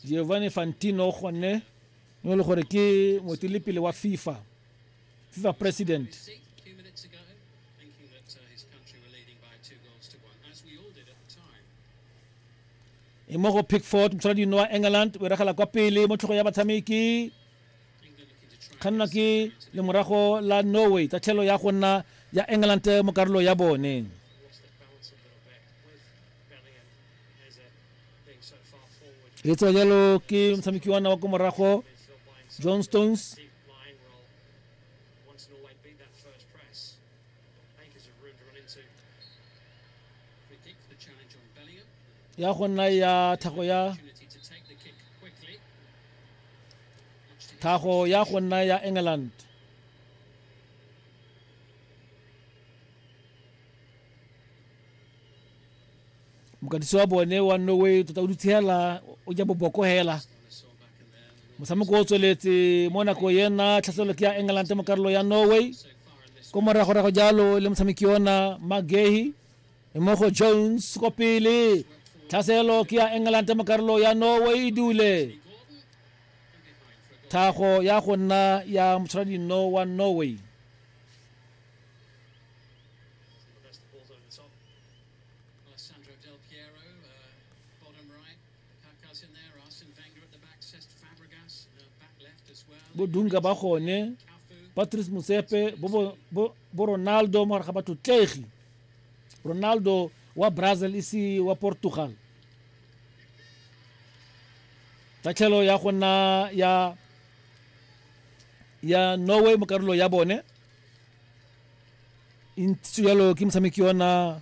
giovanni fantino gone yo e le gore ke motilepele wa fifa fifa president e mo go pickford motswala dino wa england o e regela kwa pele mo tlhogo ya batshameki kganna ke lemorago la norway tsa tlhelo ya go nna ya england mo karolo ya bone e tsewa jalo ke motshameki wa wa ko morago john stones ya go nna ya thago ya thago ya go nna ya england mokatisi wa bone wa norway tota o dutshela o ja boboko hela motshameko o tsweletse mo nako yena tlhaselelo ke ya england mo karolo ya norway ko moragorago jalo le motshameki ona magehi e mo go jones ko pele tlhaselo ke ya england mo karolo ya norway e dule thago ya go nna ya motshwaradino wa norway bodunka ba gone patrice motsepe bo ronaldo mo gare ga batlotlegi ronaldo wa brazil ise wa portugal tatlhelo ya go nna ya ya norway mo karolo ya bone ntse jalo ke motshameki ona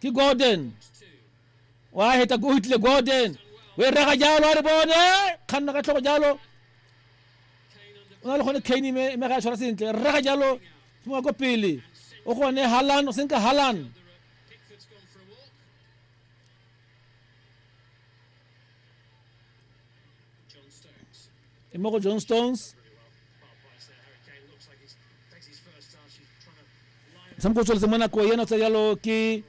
ke gordon wa heta o hitlile gordon o e rega jalo a re bone kganna ka tlhogo jalo o na le gone kane me ga a tshwara sentle rega jalo mo ko pele o gone halan o senka halan e mo go john stones motshameko o tsweletse mo nako ena tsa jalo ke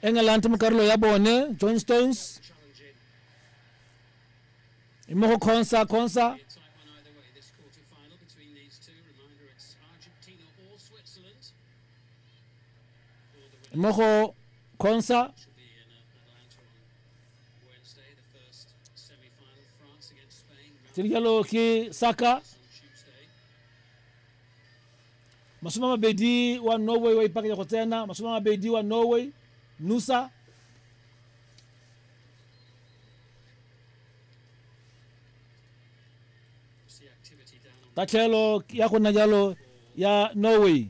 england mo karolo ya bone john stones mo go consa consa mo go consa tiri jalo ki saka masome a mabedi wa norway wa ipakanya go tsena masome a mabedi wa norway nusa tatlhelo ya go nna jalo ya norway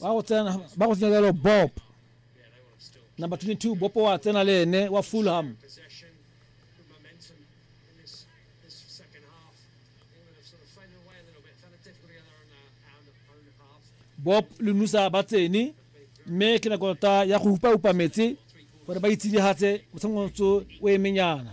ba go tsena ba go tsena jalo bob number 22 bob wa tsena le ene wa fulham bob le nusa ba tsene mme ke nako ta ya go upa upa metse gore ba itshedigatse motshamotso o emenyana